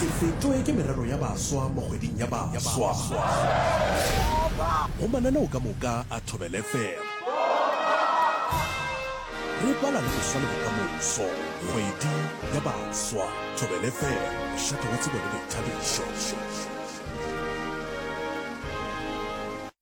Se fetšwe ke merero ya baswa mo kgweding ya baswa. Go mananeo ka moka a Thobela FM. Re bala le go swa le bokamoso. Kgwedi ya baswa. Thobela FM. Mošate wa tsebo le boithabišo.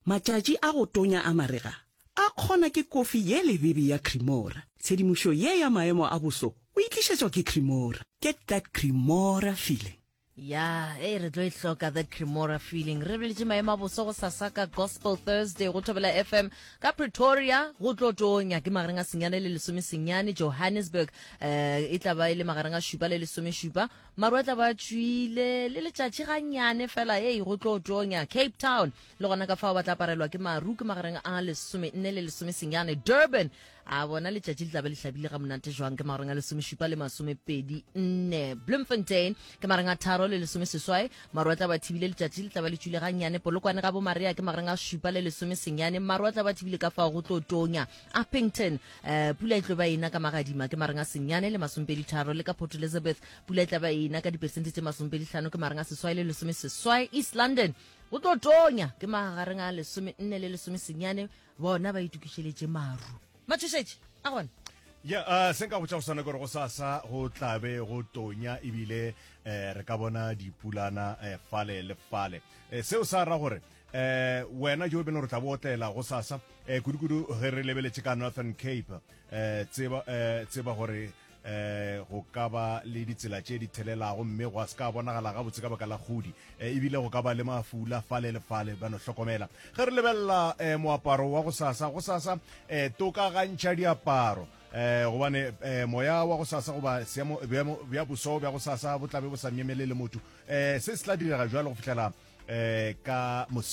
Matšatši a go tonya a marega A kgona ke kofi ye lebibi ya Cremora. Tshedimošo ye ya maemo a boso o e tlišetšwa ke Cremora. Get that Cremora feeling. Ya, ee, re tlo e hloka that Cremora feeling. Re boletše maemo a boso go sasa ka Gospel Thursday go Thobela FM ka Pretoria. Go tlo tonya ke magareng a senyane le lesome senyane. Johannesburg eh e tla ba e le magareng a šupa le lesome šupa. Maru a tla ba a tšwile le letšatši ganyane fela. Ee, go tlo tonya. Cape Town le gona ka fao ba tla aparelwa ke maru ke magareng a lesome nne le lesome senyane durban a bona letšatši le tlabe le hlabile ga monate jwang ke magareng a lesome šupa le masome pedi nne bloemfontein ke magareng a tharo le lesome seswai maru a tla ba thibile letšatši le tla ba le tšwile ga nnyane polokwane ga bomaria ke magareng a šupa le lesome senyane maru a tla ba thibile ka fao go tlo tonya uppington um pula e tlo ba ena ka magadima ke magareng a senyane le masomepedi tharo le ka port elizabeth pula e tla ba ena ka diperesente tše masomepedi tlhano ke magareng a seswai le lesome seswai east london Go tlo tonya ke magagareng a lesome nne le lesome senyane bona ba itokišeletše maru. Matšhošetše a gona. Ya a se nka botša go swana gore go sasa go tlabe go tonya ebile eh re ka bona dipulana eh, fale le fale. Eh, seo sa ra gore eh wena jo beno re tla botlela go sasa eh kudu kudu ge re lebeletše ka Northern Cape eh tseba eh tseba gore um go ka ba le ditsela tše di thelelago mme go a se ka bonagala gabotse ka baka la kgodi um ebile go ka ba le mafula fale le fale ba no hlokomela ge re lebelela um moaparo wa go sasa go sasa um eh, tokagantšha diaparo eh gobane eh moya wa go sasa goba seemo bja boso bja go sasa bo tlabe bo sa nyemele le motho eh se se tla direga jalo go fihlela eh ka